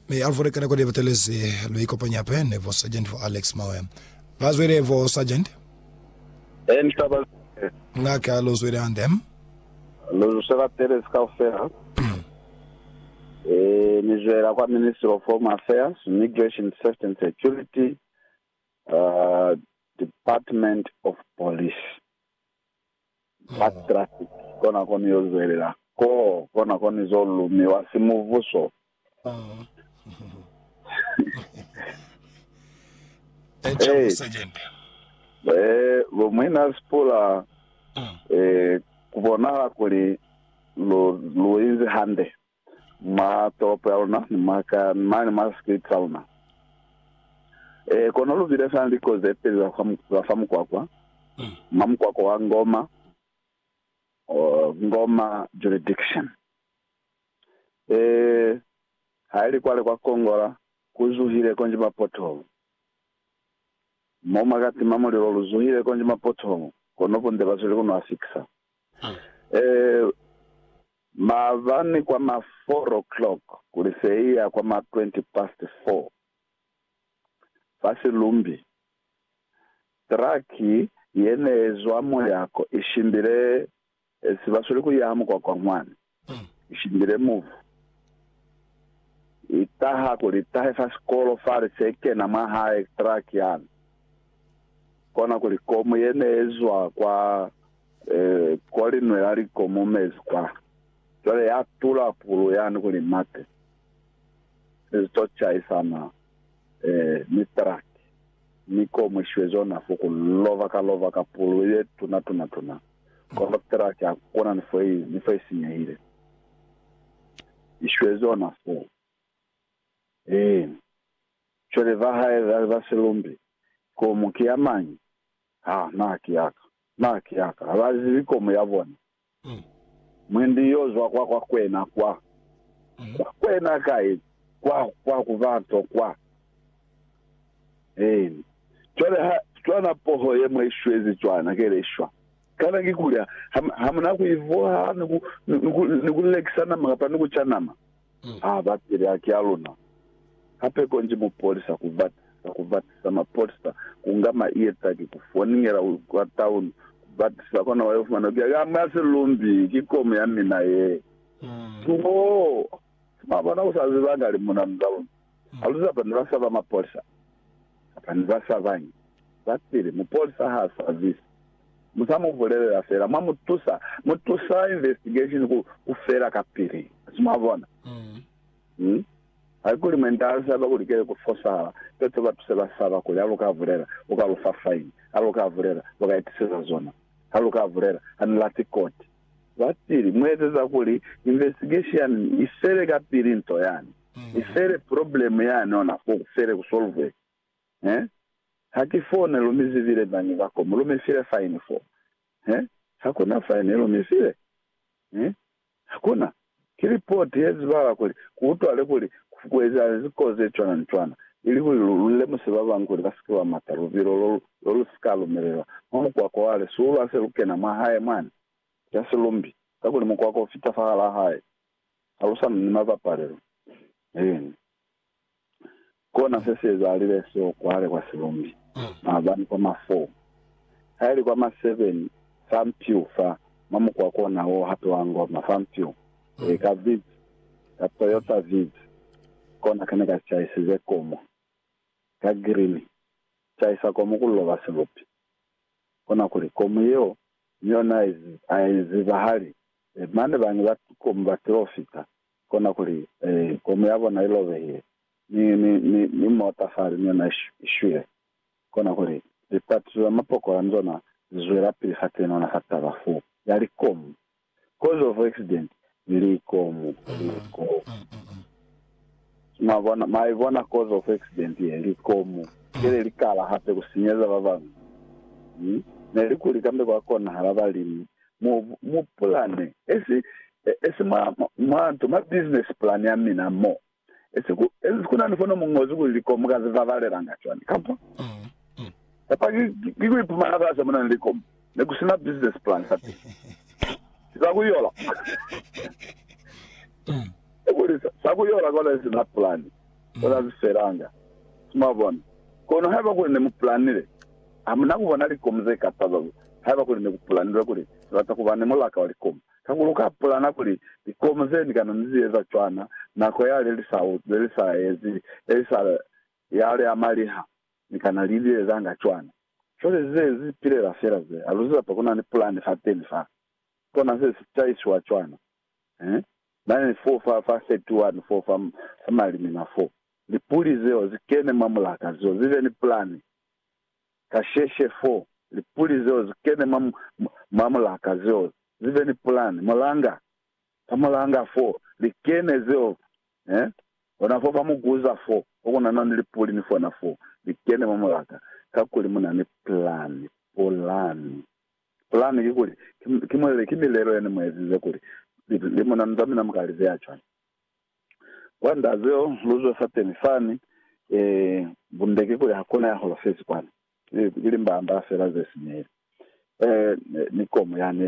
Mi Alvord kana kodi batelezi lwi kopanya pe ne vo Sergeant vo Alex Mawe. Ba zwile vo Sergeant. Ee ni taba zile. Nga ka lu zwile hande. Lu zuse batelezi kaufela. Ee ni zwela kwa Ministry of Home Affairs, Migration, Safety and Security, uh, Department of Police. Ba Traffic kona koni yo zwelela ko kona koni zo lumiwa si muvuso. Ee, bo muina sipula, ee, ku bonahala kuli lu, lu inzi hande. mwa tolopo ya luna ni mwa ka, ni mane mwa street sa luna. Eh, kono lu bile fela ni likozi ze peli za fa, za fa mukwakwa, mwa mukwakwa wa Ngoma, uh, Ngoma Jurisdiction. Eh, haili kwale kwa Kongola, ku zuhile konji ma pothole. Mo mwa ka tima mulilo, lu zuhile konji ma pothole, kono bunde ba zwile ku nwa fikisa. Eh, Maabani kwa ma four o'clock kuli seiya kwa ma twenty past four, fa Silumbi, traki yeneezwa muyako ishimbile sibasweli kuyaha mukwakwa mwani, ishimbile muvu, itaha kuli itahe fa sikolo fale sekena mwahae traki yani, kona kuli komu yeneezwa kwa Ee, kwa linwe la likomo mezi kwa. Cwale ya tula pulu yani kuli mate se si to chaisana ee, ni truck, mi ko mwishiwe zona fo ku lova ka lova ka pulu ye tuna tuna tuna. Kono truck ha kuna ni fo i, ni fo i sinyehile. I shiwe zona fo. Ee, cwale ba hae ba, ba silumbi, komu ki ya mañi? Ha, na ki ya ka. Na ki a ka lazi likomu ya bona. Mwendi yo zwa kwa kwa kwena kwa. Kwa kwena kai? Kwa, kwa ku bato kwa. Eeni. Cwale ha, cwana poho ye mwa i shwezi cwana, ke le shwa. Kana kikuli ha, ha, ha mu na ku i vuha ni ku, ni ku, ni ku lekisa nama kapa ni ku ca nama? Ha ba pili haki a luna. Hape konji mupolisa ku bata, ka ku batisa mapolisa, ku nga ma ieta ki ku foningela kwa town, ku batisa, kona wa yo fumana kuli haki a mwa si lumbi, ki komu ya mina ye. Too! Mwa bona, u sa ziba nga li muna muzalundu. Haluza bani ba saba mapolisa kapa ni ba sabañi? Sa pili, mupolisa ha sabisi. Mu sa mu bulelela fela, mwa mu tusa. Mu tusa investigation ku, ku fela kapili. Asi mwabona? Hmm? Haikuli mwenta ha saba kuli kile ku fosahala, peto ba tuse ba saba kuli ha lu ka bulela, u ka lu fa faini. Ha lu ka bulela, lu ka itiseza zona. Ha lu ka bulela, ha ni lati koti. Sa pili, mu ezeza kuli investigation i fele kapili nto yani. Ki fele problem yani ona fo ku fele ku solve he ha ki fo ne lu mi zibile bani ba ko mu lu mi file fine fo he ha ku na fine lu mi file he ha ku na ki report ye zibala kuli ku utwale kuli ku ezahale ziko ze cwana ni cwana ili kuli lu lu lemuse ba bang kuli ba si ke ba mata lubilo lo lo lu si ka lumelelwa mwa mukwako wa le suulu ha se lu kena mwa hae mwani. Ki ha si lumbi kakuli mukwako u fita fahal'a hae Ha ku sa ni ni mabapalelo, eeni, kona se si ezaalile seo kwale kwa silumbi, maabani kwa ma four, ha ili kwa ma seven, fa mpiu fa, mwa mukwa kona wo hape wa ngoma, fa mpiu, ee, ka Vitz, ka Toyota Vitz, kona kene ka chaisize komu, ka green, chaisa komu ku loba silupi. Kona kuli, komu yeo, ni yona ai zibahali, Ee, mane bane ba tukomu ba tilofita, kona kuli, Ee, komu ya bona ilobehile, ni, ni, ni, ni mota fale ni yona ishwile. Kona kuli, Litatizo za mapokola ni zona zizwelapili fa tenona fa taba fu ya likomu. Cause of accident, likomu, likomu. Mwabona? Mwa ibona cause of accident ye? Likomu. Keli likala hape kusinyeza babañwi. Hmm? Nelikuli kambe kwa konahala balimi Mu, mu pulane, esi, esi mwa, mwa nto, mwa business plan ya mina mo, esi ku, esi ku na ni fono mu ñozi kuli likomu ka zi babalelanga cwani. Kapa, kapa ki, ki ku ipumana fasi mo na ni likomu, ne ku si na business plan fa teñi. Si za ku yola. Kakuli, sa ku yola kona esi na pulane. Ku ka si felanga. Mwabona? Kono haiba kuli ne mu pulanile, hamuna ku bona likomu ze ka taba ku, haiba kuli ne ku pulanilwe kuli ni bata ku ba ni mulaka wa likomu, kakuli u ka pulana kuli likomu ze ni kana ni zi eza cwana nako yale li sa uti, li sa ezi, e li sa yale ya maliha, ni kana li li ezanga cwana. Cwale ze zi pilela fela ze, ha lu si lapa ku na ni pulani fateni fa, kona se si taisiwa cwana. Eehi. Bana ni foo fa, fa 31 foo fa, fa malimina foo. Lipuli zeo zi kene mwa mulaka zeo, zibe ni pulani. Kasheshe foo, lipuli zeo zi kene mwa, mwa mulaka zeo, zibe ni pulani. Mulanga, fa mulanga foo, li kene zeo, eh? Ona foo fa muguza foo, fo ku na, na ni lipuli ni fona foo, li kene mwa mulaka, kakuli mu na ni pulani, pulani. Ki pulani ki kuli ki mulele ki milelo yene mu ezize kuli li munanu za mina muka lize ya cwani. Kwa nda zeo lu zwe fateni fani, ee, bunde ki kuli hakuna ya holofezi kwani, ki limbaambaa fela ze sinyehile. Ee, ni komu yani